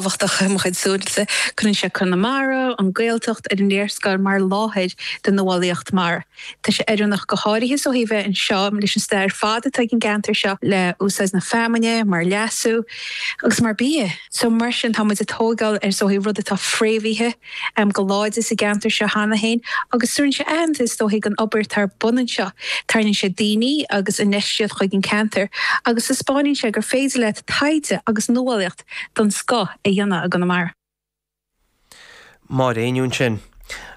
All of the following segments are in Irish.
tábhachtach i mo chuid súilese. Cuireann sé Conamara, an Ghaeltacht, ar an léarscáil mar láthair don nuálaíocht mara. Tá sé oiriúnach go háirithe ó thaobh bheith anseo leis an stair fada atá ag an gceantar seo le úsáid na feamainne mar leasú agus mar bia. So mar sin tá muid ag tóigeáil ar rud atá fréamhaithe go láidir sa gceantar seo cheana féin agus tabhrann sé aitheantas is dóigh don obair atá ar bun anseo. Tarraingíonn sé daoine agus infheistíocht chuig an ceantar agus taispeánann sé gur féidir leat taighde agus nuálaíocht den scoth a dhéanamh i gConamara. Máire Ní Éinniú ansin.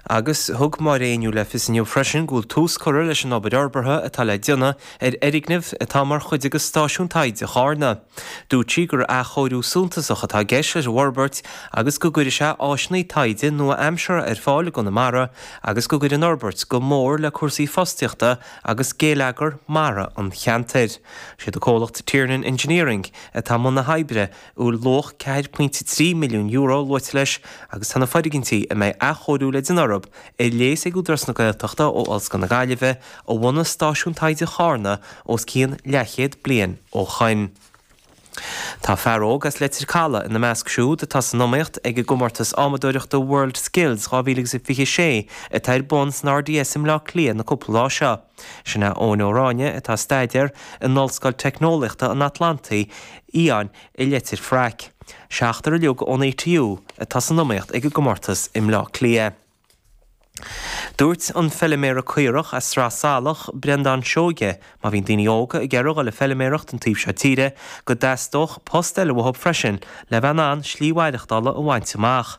Agus thug Máire Ní Éinniú le fios inniu freisin go bhfuil tús curtha leis an obair fhorbartha atá le déanamh ar fhoirgneamh atá mar chuid de Stáisiún Taighde Charna. Dúirt sí gur athchóiriú suntasach atá i gceist leis an bhforbairt agus go gcuirfidh sé áiseanna taighde nua-aimseartha ar fáil i gConamara agus go gcuirfidh an fhorbairt go mór le cúrsaí fostaíochta agus géilleagar mara an cheantair. Is iad an comhlacht Tiernan Engineering, atá i mbun na hoibre, a bhfuil luach €4.3 milliún luaite leis, agus tá na foirgintí a mbeidh athchóiriú le déanamh orthu, ar léas ag Údarás na Gaeltachta ó Ollscoil na Gaillimhe, a bhunaigh Stáisiún Taighde Charna os cionn leathchéad bliain ó shoin. Tá fear óg as Leitir Caladh ina measc siúd atá san iomaíocht ag an gcomórtas adhmadóireachta World Skills 2026 atá ar bun san RDS i mBleá Cliath na cúpla lá seo. Sin é Eoin Ó Ráinne atá ag staidéar in Ollscoil Teicneolaíochta an Atlantaigh Fhiáin i Leitir Fraic. Seachtar uilig ón ATU atá san iomaíocht ag an gcomórtas i mBleá Cliath. Dúirt an feiliméara caorach as Sraith Salach, Breandán Seoige, má bhíonn daoine óga ag iarraidh dul le feiliméaracht an taobh seo tíre go dteastódh post eile uathu freisin le bheith in ann slí mhaireachtála a bhaint amach.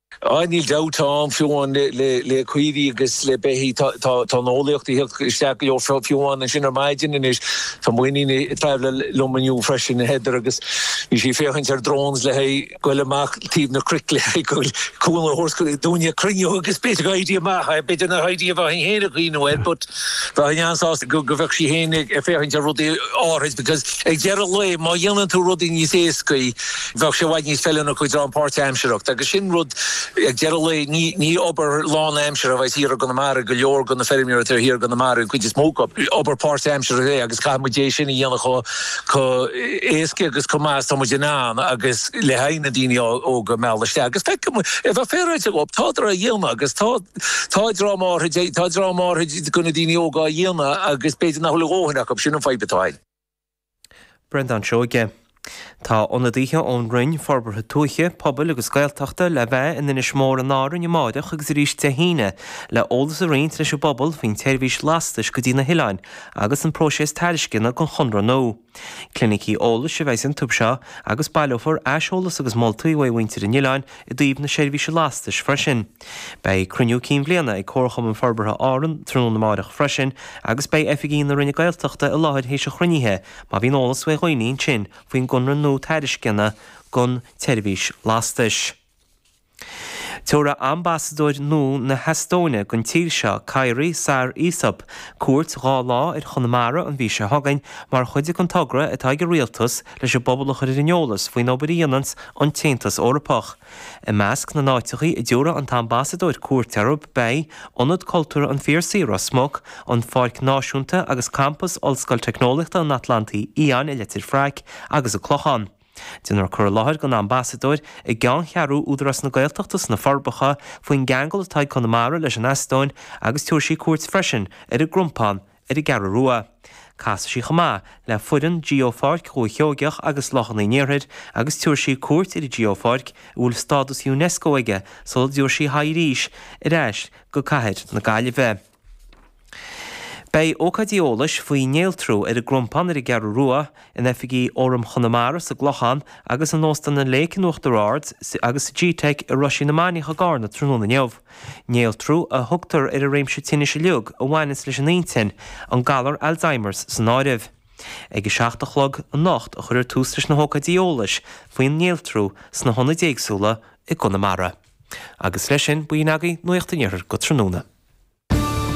Aye, níl dabht ann, fiú amháin le caoirigh agus le beithígh, tá an eolaíocht ag theacht isteach go leor, fiú amháin ansin ar maidin anois, tá m'iníon ag tabhairt lámh liom inniu freisin, Heather, agus bhí sí ag féachaint ar drones le haghaidh goil amach taobh na cnoic le haghaidh goil cúl na horse go dtí an cruinniú agus b'fhéidir go n-éireodh amach, aye, b'fhéidir nach éirí a bheinn féin ag cuimhniú air but bheinn an-sásta go bheadh sí féin ag féachaint ar rudaí áithrid because ag deireadh lae má dhéanann tú rudaí níos éascaí, bheadh sé i bhfad níos feiliúnaí ó thaobh páirt-aimseartha, agus sin rud, ag deireadh lae, ní, ní obair lán-aimseartha a bheadh thiar i gConamara, go leor de na feirmeoirí atá thiar i gConamara, an chuid is mó acu, obair páirt-aimseartha é agus caithfidh muid é sin a dhéanamh chomh, chomh héascaí agus chomh maith is atá muid in ann agus le haghaidh na daoine óga a mhealladh isteach agus feiceann muid, a bheith féaráilte dhób, tádar á dhéanamh agus tá, tá dream áirid, tá dream áirid de na daoine óga á dhéanamh agus b'fhéidir nach bhfuil a ndóthain acu, sin an fadhb atá ann. Breandán Seoighe. Tá ionadaithe ón Roinn Forbartha Tuaithe, Pobail agus Gaeltachta le bheith in Inis Mór in Árainn amáireach agus arís Dé hAoine le eolas a roinnt leis an bpobal faoin tseirbhís lastais go dtí na hoileáin agus an próiséas tairisceana don chonradh nua. Clinicí eolais a bheas iontu seo agus baileofar aiseolas agus moltaí uaidh mhuintir an oileáin i dtaobh na seirbhíse lastais freisin. Beidh Cruinniú Cinn Bhliana ag Comharchumann Forbartha Árann tráthnóna amáireach freisin agus beidh Oifigigh na Roinne Gaeltachta i láthair théis an chruinnithe má bhíonn eolas ó dhaoine ansin faoin gconradh nua tairisceana don tseirbhís lastais. Tabharfaidh Ambasadóir nua na hEastóine don tír seo, Kairi Saar-Isop, cuairt dhá lá ar Chonamara an mhí seo chugainn mar chuid den togra atá ag an Rialtas leis an bpobal a chur ar an eolas faoin obair a dhéananns an tAontas Eorpach I measc na n-áiteachaí a dtabharfaidh an tAmbasadóir cuairt orthu beidh, Ionad Cultúrtha an Phiarsaigh, Ros Muc, an Pháirc Náisiúnta agus Campas Ollscoil Teicneolaíochta an Atlantaigh Fhiáin i Leitir Fraic agus an Clochán. Déanfar cur i láthair don Ambasadóir i gceanncheathrú Údarás na Gaeltachta sna Forbacha faoin gceangal atá ag Conamara leis an Eastóin agus tabharfaidh sí cuairt freisin ar an gCrompán ar an gCeathrú Rua. Casfaidh sí chomh maith le foireann Geopháirc Dhúiche Sheoigheach agus Lochanna an Iarthair agus tabharfaidh sí cuairt ar an nGeopháirc a bhfuil stádas Unesco aige sula dtabharfaidh sí a haghaidh arís ar ais go cathair na Gaillimhe. Beidh ócáidí eolais faoi Néaltrú ar an gCrompán ar an gCeathrú Rua, in oifigí Fhóram Chonamara sa gClochán agus in Óstán an Lake in Uachtar Ard agus sa gteic i Roisín na Mainiach i gCarna tráthnóna inniu. Néaltrú a thugtar ar an réimse tinnis uilig a bhaineas leis an inchinn, an galar Alzheimers san áireamh. Ag a seacht a chlog anocht a chuirfear tús leis na hócáidí eolais faoin néaltrú sna hionaid éagsúla i gConamara. Agus leis sin, b'in agaibh, Nuacht an Iarthair go tráthnóna.